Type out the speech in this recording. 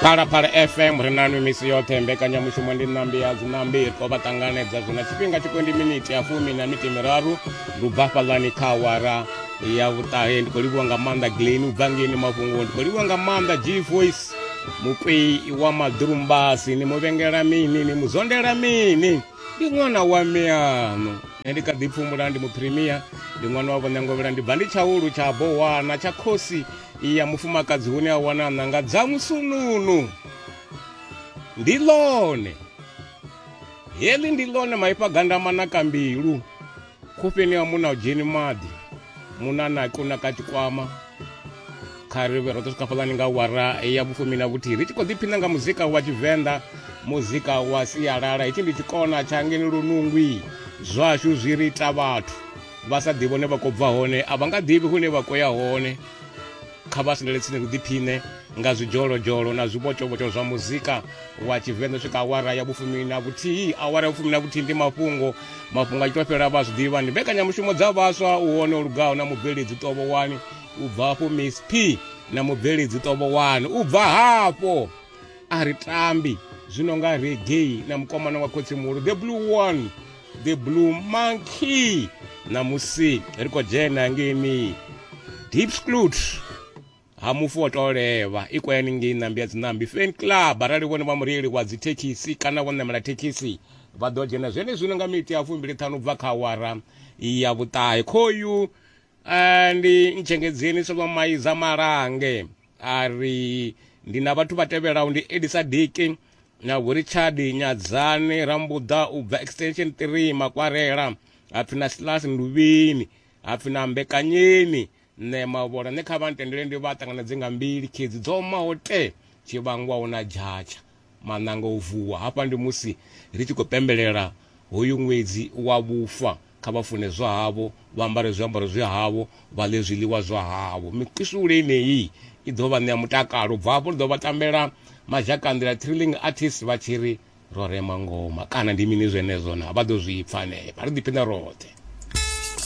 phalaphala fm ri nanu misi yoṱhe mbekanyamushumo ndi ṋambi ya dziṋambi ri khou vha ṱanganedza zwino tshifhinga tshi kwendi miniti ya fumi na miti miraru ndi u bva fhaḽani kha awara ya vhuṱahe ndi khou livhiwa nga maanḓa gleni u bva ngeni mafhungo ndi khou livhiwa nga maanḓa g voice mukwei wa maḓurumbasi ni muvhengela mini ni muzondela mini ndi ṅwana wa miano nṋe ndi kha ḓi pfumula ndi muphirimia ndi ṅwana wa vhonengovhela ndi bva ndi tshaulu tsha bowana tsha khosi iyi ya mufumakadzi hune a wana ṋanga dza musununu ndi ḽone heḽi ndi ḽone maipfa gandama na kambilu khofheni ya muna u dzheni maḓi muna na kuna ka tshikwama kha ri vhe roṱhe swikafhalani nga wara ya vhufumi na vhuthihi ri tshi khou ḓiphina nga muzika wa tshivenḓa muzika wa sialala hetshi ndi tshikona tsha ngeni lunungwi zwashu zwi ri ita vhathu vha sa ḓivhi hune vha khou bva hone a vha nga ḓivhi hune vha khou ya hone kha vha sendele tsini ri ḓiphiṋe nga zwidzholozholo na zwivhotshovhotsho zwa muzika wa tshivenḓa swika awara ya vhufumi na vhuthihi awara ya vhufumi na vhuthihi ndi mafhungo mafhungo a tshi to fhela vha zwi ḓivha ndi mbekanyamushumo dza vhaswa u hone o lugaho na mubveledzi tovhowani u bva hafho miss p na mubveledzi tovhowani u bva hafho a ri tambi zwino nga reggae na mukomana wa khotsi muhulu the blue one the blue monkey ṋamusi ri khou dzhena ngei mi deep sclut ha mufu wo tou levha i kwayani ngei ṋambi ya dziṋambi fan club arali vhone vha mureili wa dzithekhisi kana vho ṋamela thekhisi vha ḓo dzhena zwenezwino nga miti ya fumbili ṱhanu bva kha awara ya vhuṱahe khoyu Ah, ndi ntshengedzeni solomaiza malange a ri ndi na vhathu vha tevhelaho ndi elisa diki na vhurichard nyadzani rambuḓa u bva extension 3 makwarela hapfi na silas nduvhini hapfi na mbekanyeni nṋe mavhola nṋe kha vha ntendele ndi vha ṱanganedze nga mbili khedzi dzo maho te tshivhangwaho na dzhatsha Maṋanga o vuwa. Hafha ndi musi ri tshi khou pembelela hoyu ṅwedzi wa vhufa kha vha funezwa havho, vha ambare zwiambaro zwa havho, vha ḽe zwiḽiwa zwa havho. Mikusule yeneyi i ḓo vha ṋea mutakalo. U bva hafho ri ḓo vha tambela mazhakanḓila, thrilling artists, vha tshi ri ro rema ngoma kana ndi mini zwenezwo naa? Vha ḓo zwi pfa hanefha. Ri ḓiphine roṱhe.